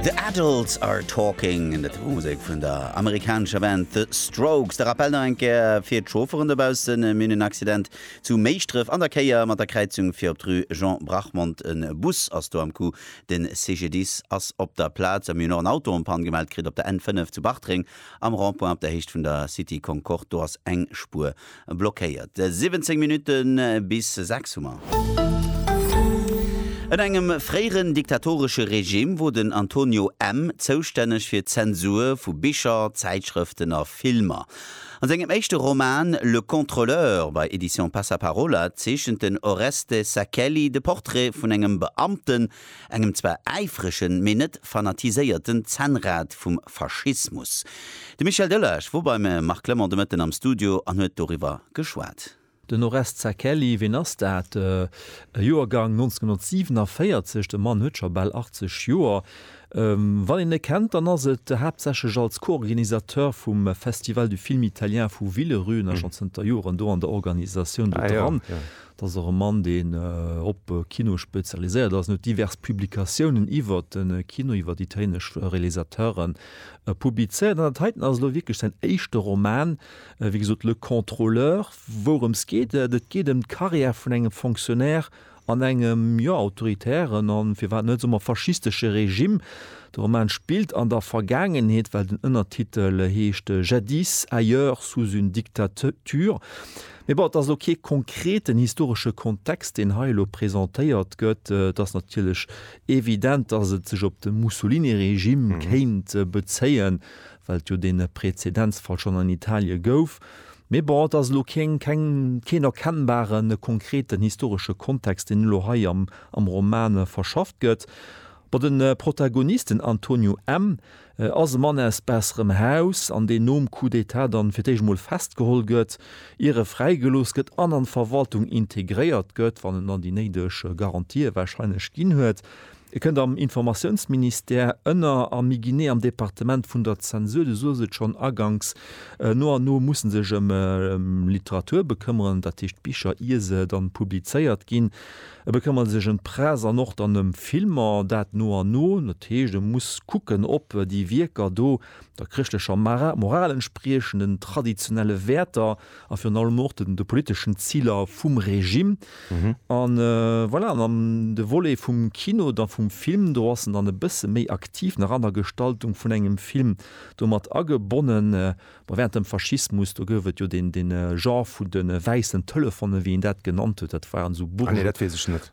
The Adults Are Talking, dat war Musek vun der amerikanescher Band The Strokes. De Rappell nach eng Kéier fir d'Chaufferen dobaussen, Mir hunn en Accident zu Méischdref an der Kéier mat der Kräizung fir op d'Rue Jean Brachmond. E Bus ass do am Coup, de CGDIS ass op der Plaz a mir hunn och en Auto en panne gemellt kritt op der N5 zu Bartreng am Rond-point op der Héicht vun der City Concorde. Do ass eng Spuer blockéiert. 17 Minutte bis 6 hu mer. Ënner engem fréieren diktatoresche Regime wor den Antonio M. zoustänneg fir d'Zensur vu Bicher, Zäitschrëften a Filmer. An sengem éischte Roman Le Contrôleur bei Editions Passaparola zeechent den Oreste Sachelli de Portrait vun engem Beamten, engem zwar äifregen, mee net fanatiséierten Zännrad vum Faschismus. De Michel Delage wor beim Marc Clement de Mëtten am Studio an huet doriwwer geschwat. Den Oreste Zacchelli, ween ass dat? Joergang 1947, de Mann huet scho bal 80 Joer. Wann een e kennt, dann ass et haaptsächlech als Co-Organisateur vum Festival du film italien vu Villerüe, en ass schonn zënter Joren do an der Organisatioun do dran. Dat ass och e Mann, deen op Kino spezialiséiert ass. En huet divers Publikatiounen iwwert de Kino, iwwer italienesch Realisateure publizéiert. An dat heiten ass elo wierklech säin éischte Roman, wéi gesot Le Contrôleur. Wourëms geet et? Et geet ëm d'Karriär vun engem Fonctionnaire an engem, jo, autoritären a firwat net soe mer faschistesche Regime. De Roman spillt an der Vergaangenheet, well den Ënnertitel heescht Jadis, ailleurs, sous une dictature. Mee bon, et ass elo kee konkreten historesche Kontext, deen hei elo presentéiert gëtt. Et ass natierlech evident, datt et sech op de Mussolini-Regime kéint bezéien, well et jo dee Prezedenzfall schonn an Italie gouf. Mee bon, et ass elo keng, keng, keen erkennbare konkreten historesche Kontext, deen elo hei am Roman verschafft gëtt. Bon, de Protagonist, den Antonio M., ass e Mann aus besserem Haus an deen nom Coup d'Etat dann fir d'éischt emol festgeholl gëtt, ier e fräigelooss gëtt an an d'Verwaltung integréiert gëtt, wann en dann déi néideg Garantië wahrscheinlech ginn huet. E kënnt am Informatiounsministère ënner a méi genee am Departement vun der Zensur. Du soës et schonn aganks, no an no muss e sech ëm Literatur bekëmmeren, dat heescht Bicher, ier se dann publizéiert ginn. E bekëmmert sech ëm d'Press an och dann ëm Filmer, dat no an no. Dat heescht, e muss kucken, ob déi Wierker do der chrëschtlecher Moral entspriechen, den traditionelle Wäerter a virun allem och de politeschen Ziler vum Regime. An voilà, an am de Volet vum Kino, da vum Film, do ass en dann e bësse méi aktiv nach an der Gestaltung vun engem Film do mat agebonnen. Bon, während dem Faschismus, do gouf et jo deen, deen Genre vun de wäissen Telefonen, wéi een dat genannt huet, dat waren esou bourg,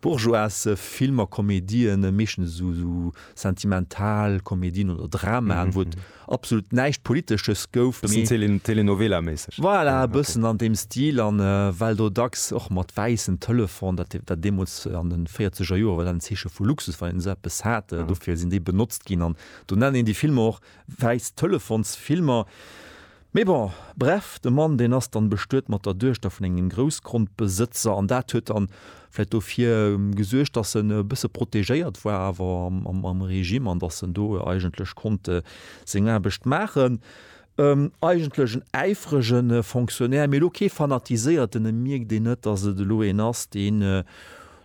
bourgeoise Filmer, Komedien, meeschtens esou, esou sentimental Komedien oder Dramaen, wou et absolut näischt Politesches gouf, mee. Bëssen Tele, Telenovela-mäisseg. Voilà, e bëssen an deem Stil, a well do dacks och mat wäissen Telefon, dat, dat deemools an de véierzeger Joer war dat en Zeeche vu Luxus, wann een esou eppes hat, dofir sinn déi benotzt ginn, an do nennen een déi Filmer och Wäiss Telefons Filmer. Mee bon, bref, de Mann deen ass dann bestuet mat der Duechter vun engem Groussgrondbesëtzer an dat huet dann vläit dofir gesuergt dass en e bësse protegéiert war awer am Regime an dass en do eigentlech konnt seng Aarbecht maachen. Eigentlech en äifrege Fonctionnaire, mee elo kee fanatiséierten, e mierkt een net dass et elo een ass deen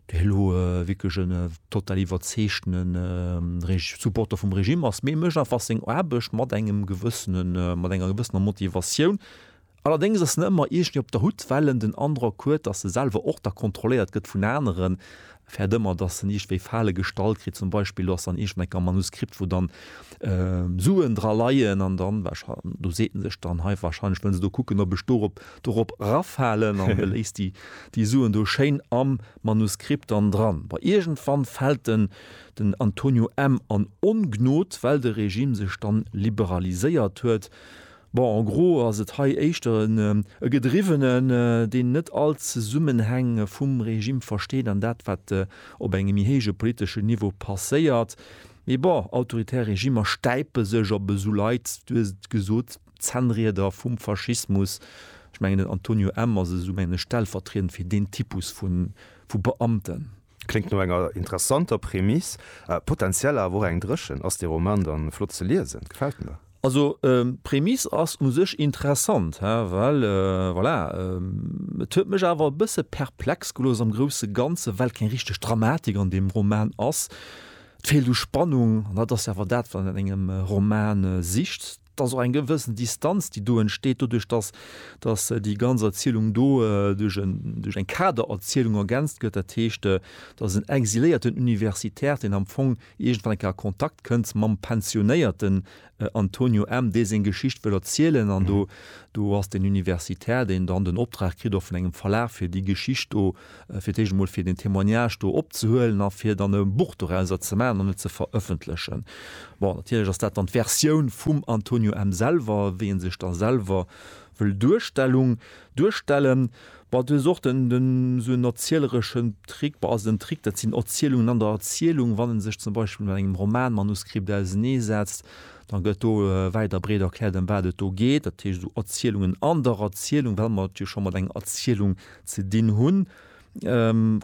Well ho wierklech en total iwwerzeegtene Supporter vum Regime ass, mee e mécht einfach seng Aarbecht mat engem gewëssene, mat enger gewëssener Motivatioun. Allerdéngs ass en ëmmer iergendwéi op der Hut, well en den Androck huet, datt e selwer och da kontrolléiert gëtt vun aneren, fäert ëmmer, datt en iergendwéi Fale gestallt kritt. Zum Beispill do ass dann iergendwéi enker e Manuskript, wou dann Suen dra leien an dann, do seet en sech dann, hei wahrscheinlech wëllen se do kucken, ob ech dorop dorop raffalen an de léisst déi déi Suen do schéin am Manuskript dann dran. Bon, iergendwann fält den den Antonio M. an Ongnod, well de Regime sech dann liberaliséiert huet. Bon, en gros ass et hei éischter en e Gedriwwenen, deen net all d'Zesummenhäng vum Regime versteet an dat, wat op engem méi héije politeschen Niveau passéiert. Mee bon, autoritär Regimer stäipe sech op esou Leit, du hues et gesot, Zännrieder vum Faschismus. Ech mengen den Antonio M. ass esou mengen ech stellvertriedend fir deen Typus vu Beamten. Kléngt no enger interessanter Prämiss, potentiell awer och eng dréchen. Ass dee Roman dann flott ze liesen? Gefält mir. Also d'Prämiss ass u sech interessant, he, well voilà, et huet mech awer e bësse perplex gelooss am grousse Ganzen, well keng richteg Dramatik an deem Roman ass. Et feelt u Spannung, an dat ass jo awer dat wat een an engem Roman sicht. Et ass och eng gewëssen Distanz, déi do entsteet doduerch, dass, dass déi ganz Erzielung do duerch en, duerch eng Kadererzielung ergänzt gëtt. Dat heescht, dass en exiléierten Universitär, deen am Fong iergendwann eng Kéier a Kontakt kënnt mam pensionéierten Antonio M., dee seng Geschicht wëll erzielen. An do, do ass den Universitär, deen dann den Optrag kritt och vun engem Verlag, fir déi Geschicht do, fir d'éischt emol fir deen Témoignage do opzehuelen a fir dann e Buch dorauser ze maachen an et ze verëffentlechen. Bon, natierlech ass dat dann d'Versioun vum Antonio M. selwer, wéi e sech da selwer wëll Duerstellung, duerstellen. Bon, du hues och den, den esou en erzielereschen Trick, bon, also den Trick, dat sinn Erzielungen an der Erzielung. Wann e sech zum Beispill mat engem Romanmanuskript auseneesetzt, da gëtt do wäit a breet erkläert, ëm wat et do geet, dat heescht esou Erzielungen an der Erzielung, well mer et jo scho mat enger Erzielung Ze dinn hunn.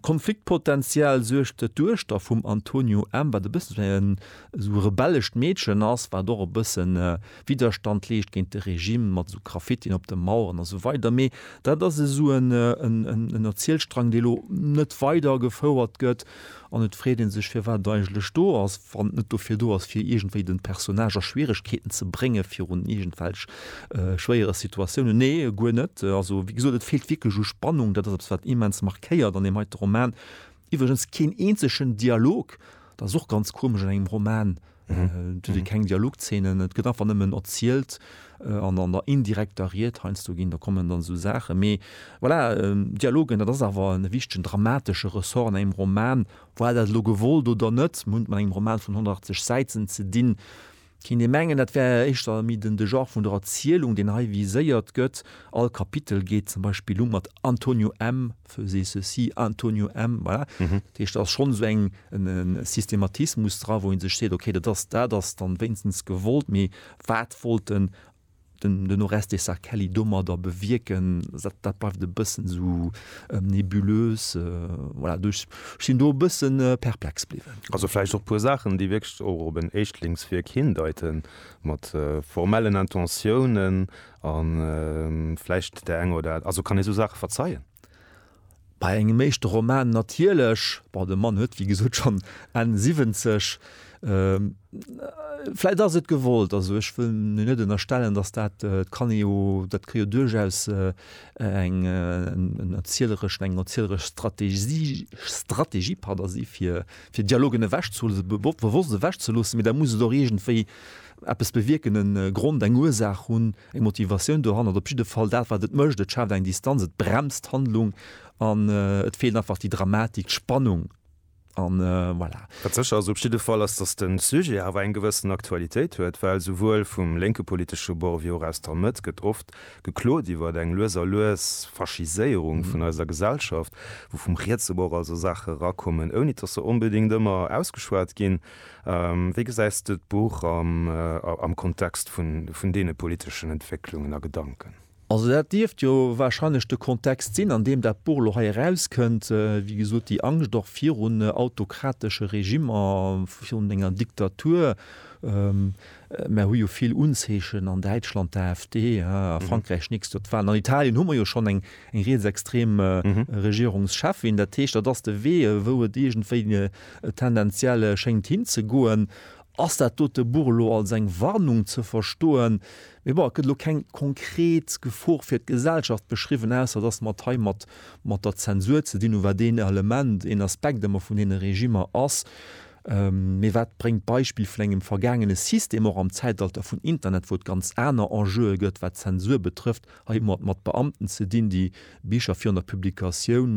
Konfliktpotential suergt, datt d'Duechter vum Antonio M. wat e bëssen esou en esou e rebellescht Meedchen ass, wat och e bëssen Widerstand leescht géint de Regime, mat esou Graffitien op de Maueren a sou weider. Mee dat ass esou en Erzielstrang, dee lo net weidergefouert gëtt. An et freet ee sech, firwat et eigentlech do ass, wann et net dofir do ass, fir iergendwéi den Personnage a Schwieregkeeten ze bréngen, virun iergendwelch schwéiere Situatiounen. Nee, guer net. Also, wéi gesot, et feelt wierklech u Spannung. Dat ass eppes, wat immens markéiert an deem heite Roman. Iwwregens keen eenzegen Dialog. Dat ass och ganz komesch an engem Roman, Et gi keng Dialogzeenen, et gëtt einfach nëmmen erzielt an an der indirekter Ried heiansdo ginn, da kommen dann esou Saachen. Mee voilà, Dialogen, dat ass awer e wichtegen dramatesche Ressort an engem Roman. War dat elo gewollt oder net, mir hunn et mat engem Roman vun 180 Säiten ze dinn. Kéint ee mengen, dat wär éischter méi den de Genre vun der Erzielung, deen hei viséiert gëtt. All Kapitel geet zum Beispill u mat Antonio M. faisez ceci, Antonio M. Voilà. Mhm. Dat heescht, da ass schonn esou eng, en, en Systematismus dra, wou ee sech seet, okay, dat ass, dat ass dann wéinstens gewollt, mee wat wollt den, den, den Orestes Zacchelli domadder bewierken, dat, dat bleift e bëssen esou nebulös. Voilà, do, ech sinn do e bësse perplex bliwwen. Also vläicht och e puer Saachen, déi wierklech och op en Éischtlingswierk hindeiten, mat formellen Intentiounen, A vläicht där enger oder. Also kann ee sou Saache verzeien? Bei engem éischte Roman natierlech. Bon, de Mann huet wéi gesot schonn Enn 70. Vläicht ass et gewollt. Also ech wëll en jo net ënnerstellen, datt dat, et kann ee jo, dat ka jo duerchaus eng en erzielereschen, eng erzieleresch Strategie, Strategie, pardon, si fir fir Dialogen ewechzelo, bewosst ewechzeloossen, mee da muss et och iergendwéi Eppes bewierken, e Grond, eng Ursaach hunn, eng Motivatioun dohannert, op jidde Fall dat, wat et mécht, et schaaft eng Distanz, et bremst d'Handlung an et feelt einfach déi Dramatik, d'Spannung an voilà. Wat sécher ass op jidde Fall, ass, datt de Sujet awer eng gewëssen Aktualitéit huet, well souwuel vum lénke politesche Bord wéi och aus der Mëtt gëtt oft geklot iwwer eng lues a lues Faschiséierung vun eiser Gesellschaft, wou vum rietse Bord also Saache erakommen, ouni datt se onbedéngt ëmmer ausgeschwat ginn. Wéi gesäis de d'Buch am Kontext vun deene politeschen Entwécklungen a Gedanken? Also dat dierft jo warscheinlech de Kontext sinn, an deem dat Buch elo hei erauskënnt. Wéi gesot, déi Angscht och virun autokratesche Regimmer, virun enger Diktatur. Mer hu jo vill Unzeechen an Däitschland, d'AfD, a Frankräich néchst Joer d'Wahlen. An Italien hu mer jo schonn eng rietsextrem Regierungscheffin. Dat heescht, dat ass de Wee, wou et iergendwéi Et tendenziell schéngt hinzegoen. Ass dat dote Buch elo als eng Warnung ze verstoen? Mee bon, et gëtt elo keng konkret Gefor fir d'Gesellschaft beschriwwen, ausser dass mer et hei mat mat der Zensur ze dinn hu, wat een Element, een Aspekt ëmmer vun deene Regimmer ass. Mee wat bréngt d'Beispill vun engem vergaangene System, och am Zäitalter vun Internet, wou et ganz aner Enjeue gëtt, wat d'Zensur betrëfft? Hei hu mer et mat Beamten ze dinn, déi Bicher virun der Publikatioun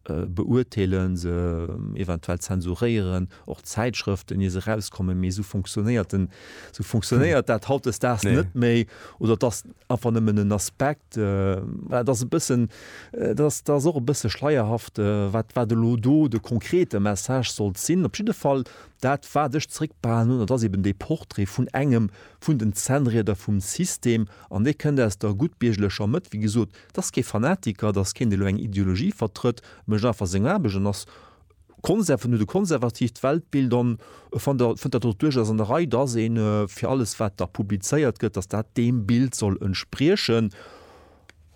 beurteelen, se eventuell zensuréieren, och Zäitschrëften, ier se erauskommen. Mee esou funktionéiert den, esou funktionéiert dat hautdesdaags net méi. Oder et ass einfach nëmmen en Aspekt. Dat ass e bëssen, dat ass, dat ass och e bësse schleierhaft, wat, wat elo do de konkrete Message sollt sinn. Op jidde Fall, dat wat ech zréckbehalen hunn, dat ass eeben dee Portrait vun engem vun den Zännrieder vum System. An dee kënnt aus der guttbierglecher Mëtt, wéi gesot, T'ass kee Fanatiker, t'ass keen dee lo eng Ideologie vertrëtt, mécht einfach seng Aarbecht an ass Konser vun e konservativt Weltbild an e fannt der fënnt dat och duerchaus an der Rei, dass ee fir alles wat da publizéiert gëtt, dass dat deem Bild soll entspriechen.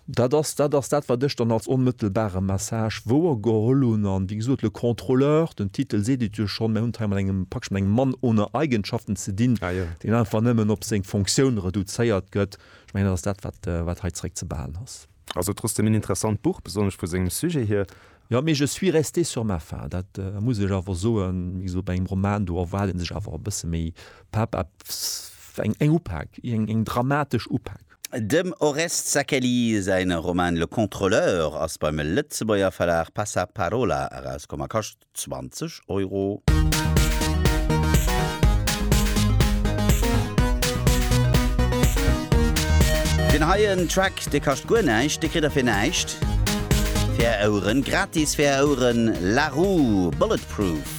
Dat ass dat ass dat wat ech dann als onmëttelbare Message wouergeholl hunn an wéi gesot le contrôleur, den Titel seet et jo schonn, mir hunn et hei mat engem praktesch mat engem Mann ohne Eigenschaften ze dinn, deen einfach nëmmen op seng Fonctioun reduzéiert gëtt. Ech mengen, dat ass dat, wat, wat hei zréck ze behalen ass. Also trotzdeem en interessant Buch, besonnesch vu sengem Sujet hier. Jo, mee je suis resté sur ma faim, dat muss ech awer soen. Wéi gesot, bei engem Roman, do erwaart ee sech awer e bësse méi Pepp, eppes, eng, eng Upak, eng, eng dramatesch Upak. Dem Oreste Sakeli säi Roman Le Contrôleur ass beim Lëtzebuerger Verlag Passaparola erauskomm a kascht 20 Euro. Deen heien Track, dee kascht guer näischt, dee kritt der fir näischt. Fir är Oueren, gratis fir är Oueren, Larue, Bulletproof.